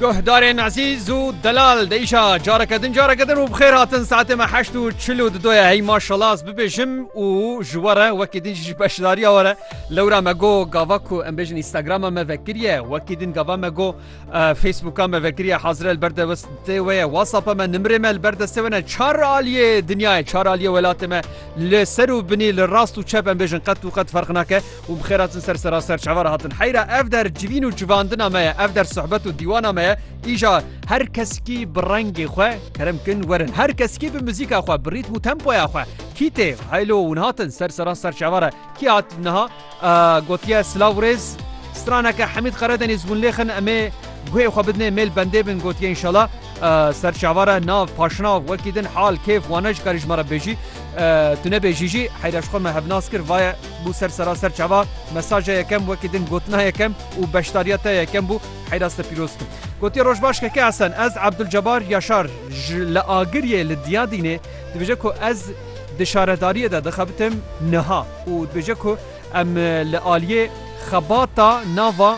Guhdarên ezîz û delal di îşa careke din careke din û bi xêr hatin saetê me heşt û çil û didoye hey maşallah ez bibêjim û ji we re wekî din jî ji beşdariya we re lewra me got gava ku em bêjin Instagrama me vekiriye wekî din gava me got Facebooka me vekiriye hazir el ber de westê we ye WhatsAppa me nimrê me li ber destê we ne çar aliyê dinyayê çar aliyê welatê me li ser û binî li rast û çep em bêjin qet û qet ferq nake û bi xêr hatin ser sera serçava re hatin heyra ev der civîn û civandina me ye ev der sohbet û dîwana me ye îja her keskî bi rengê xwe kerem kin werin her keskî bi muzîka xwe bi rîtm û tempoya xwe kî tê heylo hûn hatin ser sera serçava re kî hat niha gotiye silav û rêz straneke hemîd qeredenîz hûn lêxin em ê guhê xwe bidinê mêl bendê bin gotiye înşala serçava re nav paşnav wekî din hal kêf wane ji karî ji me re bêjî tu nebêjî jî heyra ji xwe me hevnas kir vaye Bû ser seraser çava, mesaja yekem wekî din gotina yekem û beşdariya te yekem bû, heyras te pîroz kim. Gotiye roj baş Keke Esen, ez Abdulcebar Yaşar ji li Agiriyê li Diyadînê dibêje ku ez di şaredariyê de dixebitim niha û dibêje ku em li aliyê xebata nava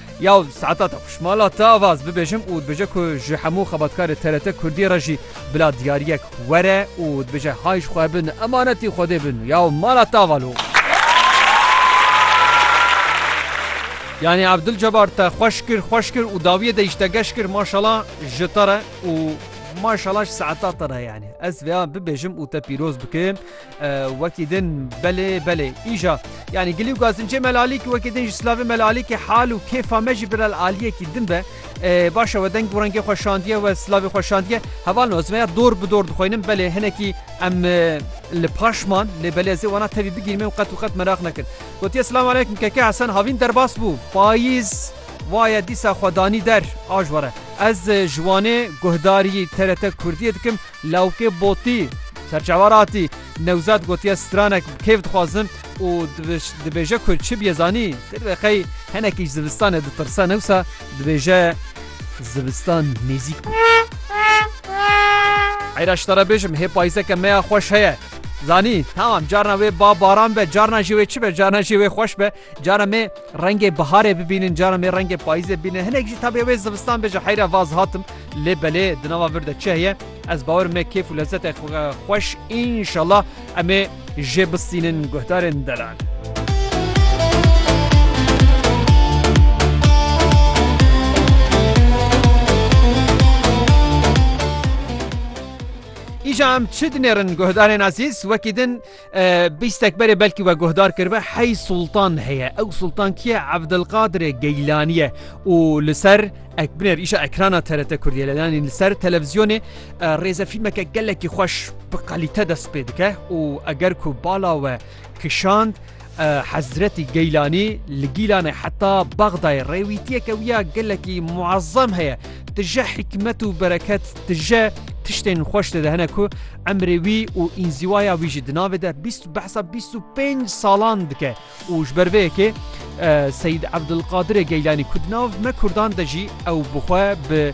Ya saeta te xweş. Mala te ava ez bibêjim û dibêje ku ji hemû xebatkarê TRT Kurdî re jî bila diyariyek were û dibêje hay ji xwe bin emanetî Xwedê bin. Ya mala te ava lo. Yanî Abdul Cebar te xweş kir xweş kir û dawiyê de jî te geş kir maşala ji te re û maşala ji saeta te re yanî. Ez vêya bibêjim û te pîroz bikim. Wekî din belê belê îja yanî gilî û gazincê melalîkî wekî din ji silavê melalîkî hal û kêfa me jî birel aliyekî din be baş e we deng û rengê xwe şandiye we silavê xwe şandiye heval me ez veya dor bi dor dixwînim belê hinekî em li paş man lê belê ez ê wana tevî bigîrîm û qet û qet meraq nekin gotiye silamu aleykum keke hesen havîn derbas bû payîz Vaye dîsa xwedanî der aj were ez ji wanê guhdarî TRT Kurdiyê dikim Lawikê Botî, Serçava Ratî, Newzad gotiye stranek bi kêf dixwazim û dibêje ku çi bîye zanî, ti divê qey hinekî ji zivistanê ditirse newsa dibêje zivistan nêzîk bû. Heyra ji te re bêjim hê payîzeke me ya xweş heye. Zanî, tamam carna wê ba baran be, carna jî wê çi be, carna jî wê xweş be, carna me, Rengê biharê bibînin, caran bê rengê payîzê bînin, hinek jî tabê wê zivistan bê ji heyra vaz hatim, lê belê di nava vir de çi heye, ez bawer me kêf û lezzetê xweş înşallah em ê jê bistînin guhdarên delal. Îja em çi dinêrin guhdarên ezîz, wekî din, Bîstek berê belkî we guhdar kiribe hey Sultan heye. Ew Sultan kî ye? Evdilqadirê Geylanî ye û li ser ekbinêr îşa ekrana TRT Kurdiyê le yanî li ser televizyonê rêzefîlmeke gelekî xweş bi qalîte dest pê dike û eger ku bala we kişand Hezretî Geylanî li Gîlanê heta Bexdayê rêwîtiyeke wiya gelekî muezzem heye. Tije hikmet û bereket Tije tiştên xweş dide hene ku emrê wî û înzîwaya wî jî di navê de bîst behsa bîst û pênc salan dike û ji ber vê yekê Seyîd Ebdulqadirê Geylanî ku di nav me Kurdan de jî ew bixwe bi